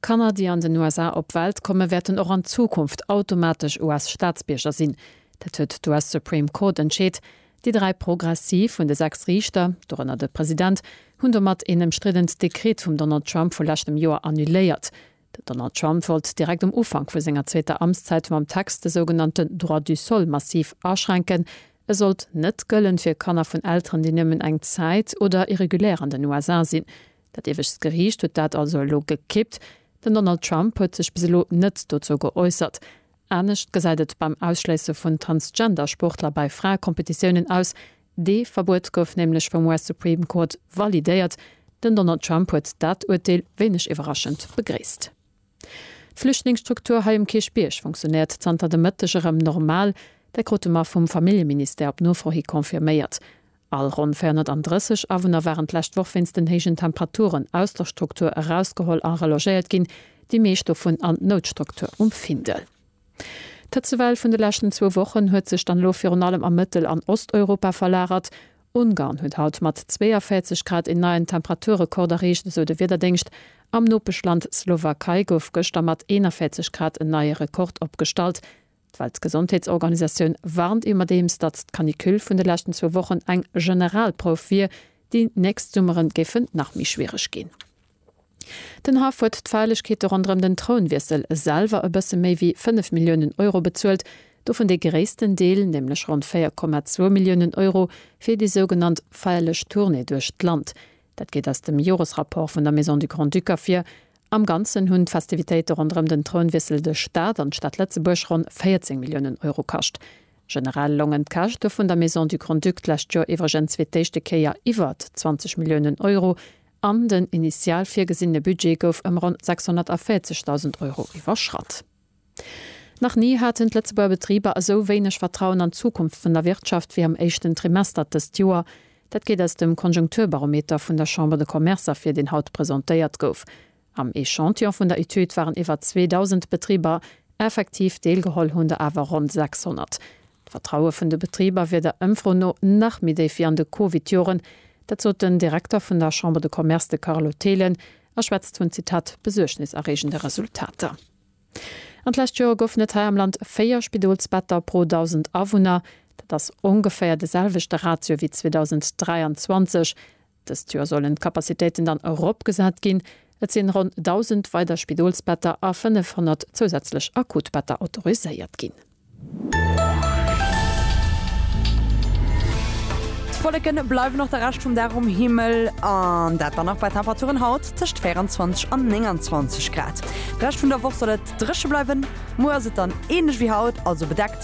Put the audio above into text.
Kanner, déi an den USA op d'Welt kommen, wäerten och an Zukunft automatesch US-Staatsbierger sinn. Dat huet d'US-Supreme Court entscheet. Déi dräi progressiv vun de sechs Riichter, dorënner de President, hunn domat een ëmstriddent Dekret vum Donald Trump vu leschtem Joer annuléiert. Den Donald Trump wollt direkt um Ufank vu senger zweeter Amtszäit mam Text de sougenannte Droit du sol massiv aschränken, E sollt net gëllen fir Kanner vun Elteren, déi nëmmen eng Zäit oder irregulär an den USA sinn. Dat iewescht Geriicht huet dat also elo gekippt. Den Donald Trump huet sech bis elo net dozou geäussert. Anescht gesäit et beim Ausschléisse vun Transgender-Sportler bei Fraekompetitiounen aus. Dee Verbuet gouf nämlech vum US Supreme Court validéiert. Den Donald Trump huet dat Urteel wéineg iwwerraschend begréisst. D'Flüchtlingsstruktur hei um Kierchbierg funktionéiert zanter de Mëtteg erëm normal. Dat krute mer vum Familljeministère op Nofro hi confirméiert. All ronn 430 Awunner waren d'lescht Woch wéinst den héijen Temperaturen aus der Struktur erausgeholl a relogéiert ginn, déi meescht dovun an d'Noutstruktur um Findel. D'Hëtzewell vun de leschten zwou Wochen huet sech dann elo virun allem a Mëttel an Osteuropa verlagert. Ungarn huet haut mat 42 Grad een neien Temperaturrekord erreecht, esou de Wiederdéngscht. Am Nopeschland Slowakei gouf gëschter mat 41 Grad en neie Rekord opgestallt. D'Weltgesondheetsorganisatioun warnt iwwerdeems, datt d'Canicule vun de leschten zwou Wochen eng Generalprouf wier. Déi nächst Summeren géifen nach méi schwiereg ginn. Den Haff huet d'Feierlechkeete ronderëm den Trounwiessel selwer e bësse méi wéi 5 Milliounen Euro bezuelt, dovun dee gréissten Deel, nämlech ronn 4,2 Milliounen Euro, fir déi sougenannt feierlech Tournée duerch d'Land. Dat geet aus dem Joresrapport vun der Maison du Grand-Duc ervir. Am Ganzen hunn d'Festivitéite ronderëm den Trounwiessel de Staat an d'Stad Lëtzebuerg ronn 14 Milliounen Euro kascht. Generell longen d'Käschte vun der Maison du Grand-Duc d'lescht Joer iwwregens fir d'éischte Kéier iwwert 20 Milliounen Euro an den initial virgesinne Budget gouf ëm ronn 640.000 Euro iwwerschratt. Nach ni haten d'Lëtzebuerger Betriber esou wéineg Vertrauen an d'Zukunft vun der Wirtschaft wéi am éischten Trimester dëst Joer. Dat geet aus dem Konjunkturbarometer vun der Chambre de Commerce ervir, deen haut presentéiert gouf. Am Echantillon vun der Etüd waren iwwer 2.000 Betriber effektiv deelgeholl, hunn der awer ronn 600 D'Vertraue vun de Betriber wier der Ëmfro no nach méi déif wéi an de Covid-Joren. Dat sot den Direkter vun der Chambre de Commerce, de Carlo Thelen, a schwätzt vun, Zitat, besuergniserreegende Resultater. An d'lescht Joer goufen et hei am Land 4 Spidolsbetter pro 1.000 Awunner. Dat ass ongeféier de selwechte Ratio wéi 2023, Dëst Joer sollen d'Capacitéiten dann eropgesat ginn. Et sinn ronn 1.000 weider Spidolsbetter a 500 zousätzlech Akutbetter autoriséiert ginn. D'Wolleken bleiwen och de Rescht vum Dag um Himmel, an dat dann nach bei Temperaturen haut tëscht 24 an 29 Grad. De Rescht vun der Woch soll et dréche bleiwen. Muer ass et dann ähnlech wéi haut, also bedeckt.